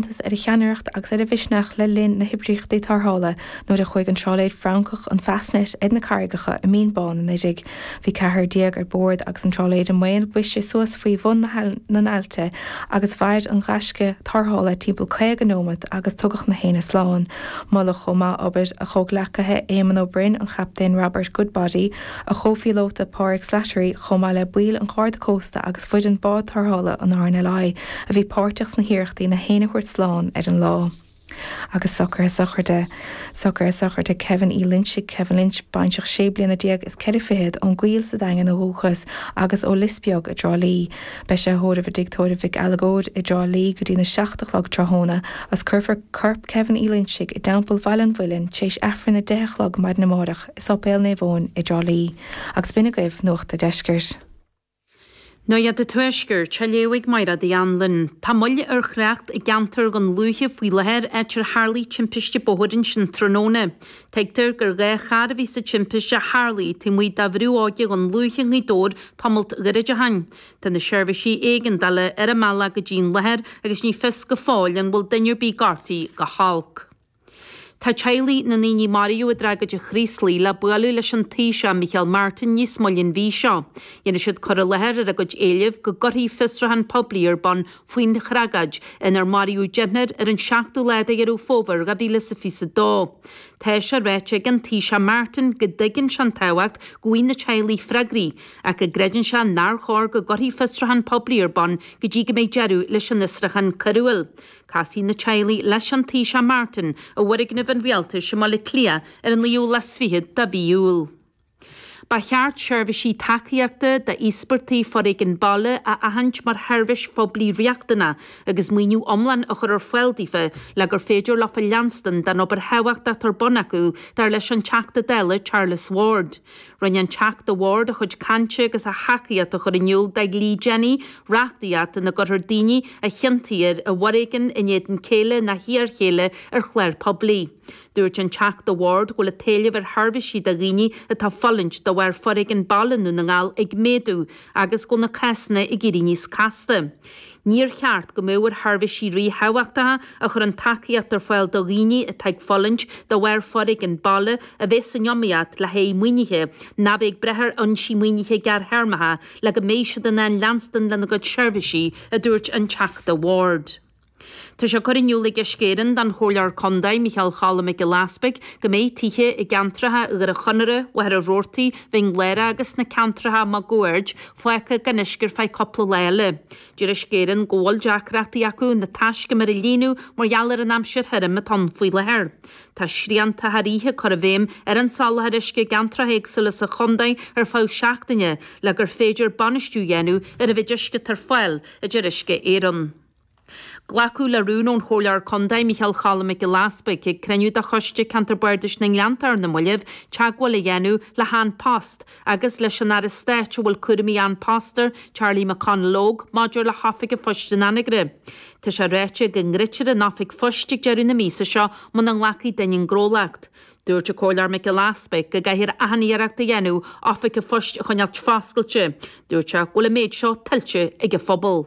iontas ar a cheannaireacht agus ar a mhisneach le linn na hoibríochtaí tarrthála nuair a chuaigh an trálaer Francach an Fastnet ar na carraigeacha i mBinn Bán anuraidh. Bhí ceathrar déag ar bord agus an trálaer i mbaol briseadh suas faoi bhun na n-aillte agus mhair an gaisce tarrthála timpeall caoga neomat agus tugadh na héinne slán. Moladh chomh maith obair a chomhghleacaithe Éamonn Ó Broin, an Chaptaen Robert Goodbody, a chomhphíolóta Páraic Slattery chomh maith le baill an Gharda Cósta agus foireann Bád Tarrthála an RNLI a bhí páirteach sna hiarrachtaí na héinne a thabhairt slán ar an lá. Agus socruithe sochraide sochraid Kevin Uí Loinsigh Kevin Lynch, baintreach sé bliana déag is ceithre fichid, ón gCoill sa Daingean ó dhúchas agus ó Lios Beag i dTrá Lí. Beidh sé á thórramh i dTigh Tórraimh Mhic Uileagóid i dTrá Lí go dtí'n 7 a chlog tráthnóna agus cuirfear corp Kevin Uí Loinsigh i dTeampall Bhaile an Mhuilinn t'éis Aifreann a deich a chlog maidin amáireach. Séipéal Naomh Eoin i dTrá Lí agus b'in agaibh Nuacht a' Deiscirt. Nuacht a' Tuaiscirt, á léamh ag Mairéad Uí Anluain. Tá moill ar thrácht i gceantar Dhún Lúiche faoi láthair, áit ar tharlaigh timpiste bóthair ansin tráthnóna. Tuigtear gur dhá charr a bhí sa timpiste a tharlaigh taobh amuigh de Bhrú Óige Dhún Lúiche i nGaoth Dobhair tamalt gairid ó shin. Tá na seirbhísí éigeandála ar a mbealach go dtín láthair agus ní fios go fóill an bhfuil duine ar bith gortaithe go holc. Tá teaghlaigh na ndaoine a maraíodh i dtragóid an Chraoslaigh le bualadh leis an Taoiseach Micheál Martin níos moille an mhí seo. Dhéanfaidh siad cur i láthair ar a gcuid éilimh go gcuirfí fiosruchán poiblí ar bun faoin thragóid inar maraíodh deichniúr ar an tseachtú lá de Dheireadh Fómhair 2022. Tá sé ráite ag an Taoiseach Martin go dtuigeann sé an tábhacht go bhfaighidh na teaghlaigh freagraí ach go gcreideann sé nár chóir go gcuirfí fiosruchán poiblí ar bun go dtí go mbeidh deireadh leis an fhiosruchán coiriúil. Casfaidh na teaghlaigh leis an Taoiseach Martin i bhfoirgneamh an rialtais i mBaile Cliath ar an 29ú de mhí Iúil. Ba cheart seirbhísí tacaíochta d'íospartaigh foréigin baile a aithint mar sheirbhís phoiblí riachtanach agus maoiniú iomlán a chur ar fáil daofa le gur féidir leofa leanstan den obair thábhachtach atá ar bun acu, dar leis an Teachta Dála Charles Ward. Rinne an Teachta Ward a chuid cainte agus a thacaíocht á chur in iúl do Dhlí Jennie, reachtaíocht ina gcuirfear daoine a chiontaítear i bhforéigean in éadan céile nó iarchéile ar chlár poiblí. Dúirt an Teachta Ward go bhfuil an t-éileamh ar sheirbhísí do dhaoine atá ag fulaingt de bharr foréigean baile i nDún na nGall ag méadú agus go bhfuil na cásanna ag éirí níos casta. Níor cheart go mbeadh ar sheirbhísí ríthábhachtacha a chuireann tacaíocht ar fáil do dhaoine atá ag fulaingt de bharr foréigean baile a bheith san iomaíocht le haghaidh maoinithe ná bheith ag brath ar fhoinsí maoinithe gearrthéarmacha le go mbeidh siad in ann leanstan lena gcuid seirbhísí, a dúirt an Teachta Ward. Tá sé curtha in iúl ag Uisce Éireann don Chomhairleoir Contae Micheál Choilm Mac Giolla Easpaig go mbeidh tithe i gceantracha Dhoire Chonaire, Mhachaire Rabhartaigh, Mhín Lárach agus sna ceantracha máguaird, Fágtha gan uisce ar feadh cupla lá eile. Deir Uisce Éireann go bhfuil deacrachtaí acu na taiscumair a líonadh mar gheall ar an aimsir thirim atá ann faoi láthair. Tá srianta thar oíche á gcur i bhfeidhm ar an soláthar uisce i gceantracha éagsúla sa chondae ar feadh seachtaine le gur féidir bainistiú dhéanamh ar an mhéid uisce atá ar fáil, a deir Uisce Éireann. Glacadh le rún ón Chomhairleoir Contae Micheál Cholm Mac Giolla Easbuic ag cruinniú de Choiste Ceantar Bardais na nGleanntach ar na mallaibh teagmháil a dhéanamh le hAn Post agus leis an Aire Stáit a bhfuil cúramaí An Post air Charlie McConalogue maidir le hOifig an Phoist in Anagaire. Tá sé ráite go ndruidfear an Oifig Phoist ag deireadh na míosa seo muna nglacfaidh duine an gnólacht. Dúirt an Comhairleoir Mac Giolla Easbuic go gcaithfear achan iarracht a dhéanamh Oifig an Phoist a choinneáilt foscailte. Dúirt sé go bhfuil an méid seo tuillte ag an phobal.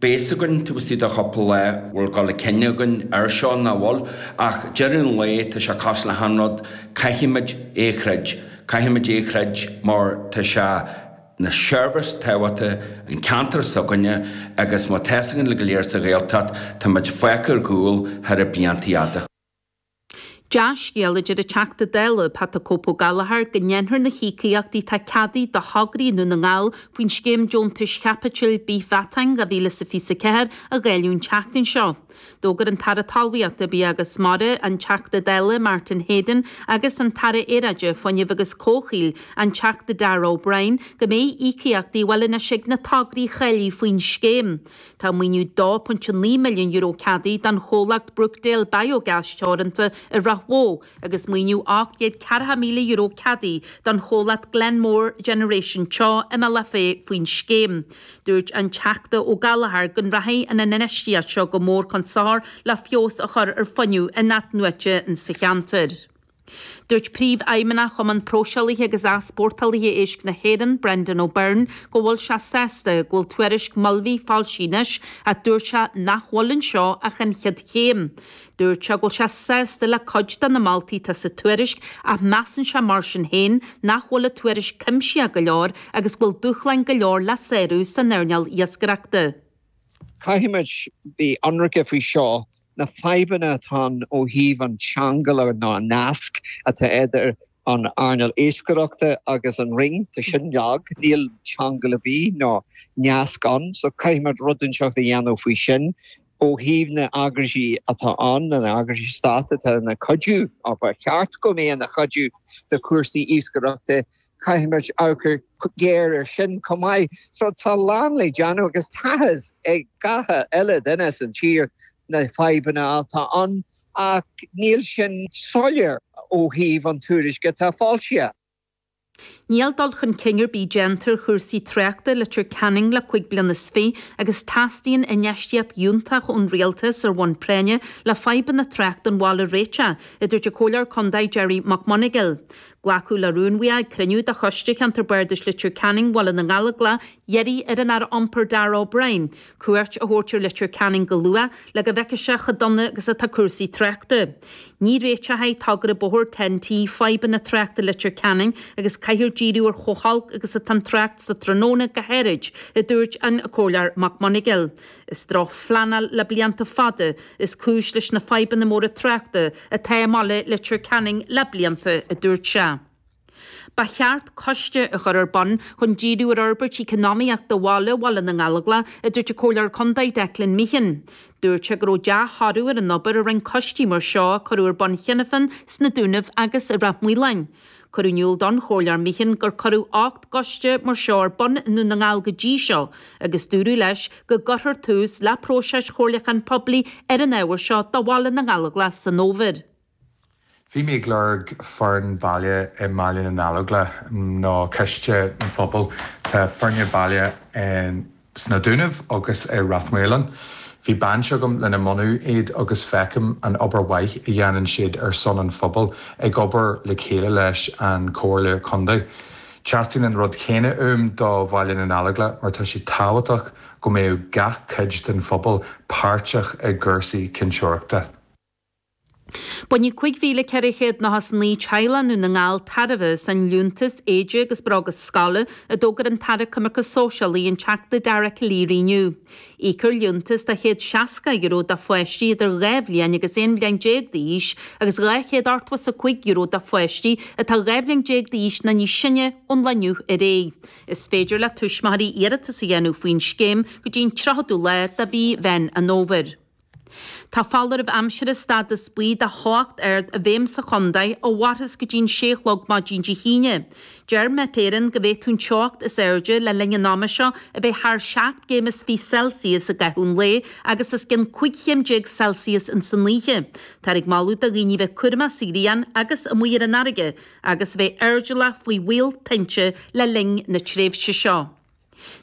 beidh fhios againn taobh istigh de chúpla lá an bhfuil dul chun cinn againn air seo nó nach bhfuil ach ag deireadh an lae tá sé cosúil le haon rud caithfimid é a throid caithfimid é a throid mar tá sé ina sheirbhís tábhachtach don ceantar s'againne agus mar atá fhios againn uilig go léir sa Ghaeltacht táimid fágtha ar gcúl thar na bliantaí fhada. Dea-scéal é a deir an Teachta Dála, Pat the Cope Ó Gallchóir, go ndéanfar na híocaíochtaí atá ceadaithe do thograí i nDún na nGall faoin Scéim Deontais Chaipitil Bithmheatáin 2024 a dháileadh an tseachtain seo. D'fhógair an tAire Talmhaíochta, Bia agus Mara, an Teachta Dála Martin Heydon agus an tAire Aeráide, Fuinnimh agus Comhshaoil, an Teachta Darragh O'Brien, go mbeidh íocaíochtaí ar fáil anois ag na tograí cháilithe faoin scéim. Tá maoiniú €2.9 milliún ceadaithe don chomhlacht Brookdale Biogas Teoranta i Ráth Bhoth agus maoiniú €840,000 ceadaithe don chomhlacht Glenmore Generation Teo i mBealach Féich faoin scéim. Dúirt an Teachta Ó Gallchóir go nrachaidh an infheistíocht seo go mór chun sochair le feabhas a chur ar fuinneamh in-athnuaite sa cheantar. Dúirt Príomhfheidhmeannach Chumann Próiseálaithe agus Easpórtálaithe Éisc na hÉireann, Brendan O'Byrne, go bhfuil sé sásta go bhfuil tuairisc Mulvey foilsithe anois ach dúirt sé nach bhfuil anseo ach an chéad chéim. Dúirt sé go bhfuil sé sásta le cuid de na moltaí atá sa tuairisc ach measann sé mar sin féin nach bhfuil an tuairisc cuimsitheach go leor agus go bhfuil dúshláin go leor le sárú san earnáil iascaireachta. Caithfimid bheith ionraic faoi seo. na fadhbanna atá ann ó thaobh an cheangail nó an nasc atá idir an earnáil iascaireachta agus an Roinn. Tá sin lag. Níl ceangal ar bith ná nasc ann. So caithfimid rud inteacht a dhéanamh faoi sin. Ó thaobh na h-eagraisí atá ann, na h-eagraisí stát atá ina cuidiú, ba cheart go mbeadh ina chuidiú do chúrsaí iascaireachta Caithfimid amharc go géar ar sin chomh maith. So tá a lán le déanamh agus tá a fhios ag gach uile duine san tír na fadhbanna atá ann ach níl sin soiléir ó thaobh an tuairisce atá foilsithe. Níl dul chun cinn ar bith déanta ar chúrsaí tráchta i Leitir Ceanainn le cúig bliana is fiche agus teastaíonn infheistíocht fhiúntach ón Rialtas ar bhonn práinne le fadhbanna tráchta an bhaile a réiteach, a dúirt an Comhairleoir Contae Gerry Mac Monagail. Glacadh le rún uaidh ag cruinniú de Choiste Cheantar Bardais Leitir Ceanainn Bhaile na nGallóglach ag iarraidh ar an Aire Iompair Darragh O'Brien cuairt a thabhairt ar Leitir Ceanainn go luath le go bhfeicfeadh sé chomh dona agus atá cúrsaí tráchta. Ní réiteoidh togra bóthair TEN-T fadhbanna tráchta Leitir Ceanainn agus caithfear díriú ar chomh holc agus atá an trácht sa tráthnóna go háirid, a dúirt an Comhairleoir Mac Monagail. Is drochphleanáil le blianta fada is cúis leis na fadhbanna móra tráchta atá i mBaile Leitir Ceanainn le blianta, a dúirt sé. Ba cheart coiste a chur ar bun chun díriú ar fhorbairt eacnamaíochta bhaile Bhaile na nGallóglach, a dúirt an Comhairleoir Contae Declan Meehan. Dúirt sé go raibh dea-thoradh ar an obair a rinne coistí mar seo a cuireadh ar bun cheana féin sna Dúnaibh agus i Ráth Maoláin. Cuireadh in iúl don Chomhairleoir Meehan gur cuireadh ocht gcoiste mar seo ar bun i nDún na nGall go dtí seo agus dúradh leis go gcuirfear tús le próiseas comhairliúcháin poiblí ar an ábhar seo do Bhaile na nGallóglach san fhómhar. Bhí mé ag lorg foireann baile i mBaile na nGallóglach nó coiste an phobail. Tá foirne baile in. sna Dúnaibh agus i Ráth Maoláin. Bhí baint agam lena mbunú iad agus feicim an obair mhaith a dhéanann siad ar son an phobail ag obair le chéile leis an Comhairle Contae. Teastaíonn an rud céanna uaim do Bhaile na nGallóglach mar tá sé tábhachtach go mbeadh gach cuid den phobal páirteach i gcúrsaí cinnteoireachta. Bainfidh 5,499 teaghlach i nDún na nGall tairbhe as an liúntas éide agus bróga scoile a d'fhógair an tAire Coimirce Sóisialaí an Teachta Dara Calleary inniu. Íocfar liúntas de €160 do pháistí idir 2 bhliain agus 11 bhliain d'aois agus €285 do pháistí atá 12 bhliain d'aois nó níos sine ón lá inniu ar aghaidh. Is féidir le tuismitheoirí iarratas a dhéanamh faoin scéim go dtí an 30ú lá de mhí Mheán an Fhómhair. Tá foláireamh aimsire stádas buí de theocht ard i bhfeidhm sa chontae ó Mhárthas go dtí'n sé a chlog maidin Dé hAoine. Deir Met Éireann go bhféadfadh an teocht is airde le linn an ama seo a bheith thar seacht gcéim is fiche Celsius i gcaitheamh an lae agus os cionn cúig chéim déag Celsius insan oíche. Táthar ag moladh do dhaoine bheith cúramach sa ghrian agus amuigh ar an fharraige agus bheith airdeallach faoi bhaol tinte le linn na tréimhse seo.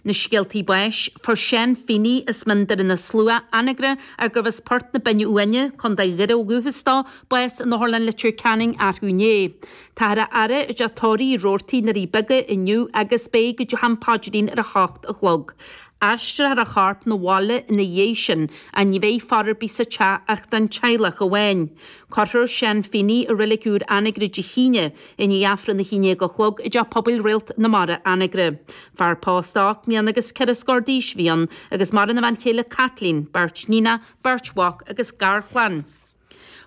Na Scéaltaí Báis, Fuair Seán Feeney as Mín Doire na Slua, Anagaire, ar gurbh as Port na Binne Uaine, Co. Dhoire ó dhúchas dó, bás in Otharlann Leitir Ceanainn athrú inné. Táthar á fhaire i dTeach Tórraimh Uí Rabhartaigh, i nDoirí Beaga, inniu agus beidh go dtí am paidrín ar a hocht a chlog. Aistreofar a chorp 'na bhaile ina dhiaidh sin and ní bheidh faire ar bith sa teach ach don teaghlach amháin. Cuirfear Seán Feeney i Reilig Úr Anagaire Dé hAoine. I ndiaidh Aifreann a haon déag a chlog i dTeach Pobail Réalt na Mara, Anagaire. Fear pósta ocht mbliana agus ceithre scór d'aois a bhí ann agus maireann a bhean chéile Caitlín, beirt níonach, beirt mhac agus garchlann.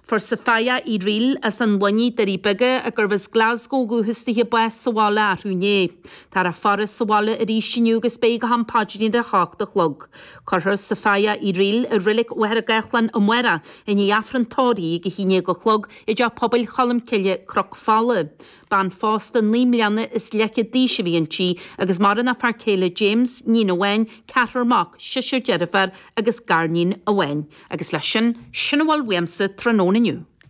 Fuair Sophia Uí Fhrighil as an Luinnigh, Doirí Beaga, a gurbh as Glasgow ó dhúchas di, bás sa bhaile athrú inné. Táthar á faire sa bhaile arís inniu agus beidh go ham paidrín ar a hocht a chlog. Cuirfear Sophia Uí Fhrighil i Reilig Mhachaire Gathlán amárach i ndiaidh Aifreann tórraimh ag a haon déag a chlog I dTeach Pobail Cholmcille, Cnoc Fola. Bean phósta naoi mbliana is leathchéad d'aois a bhí inti agus maireann a fear céile James, níon amháin, ceathrar mac, seisear deirfiúr agus garníon amháin. Agus leis sin, sin a bhfuil uaimse tráthnóna inniu.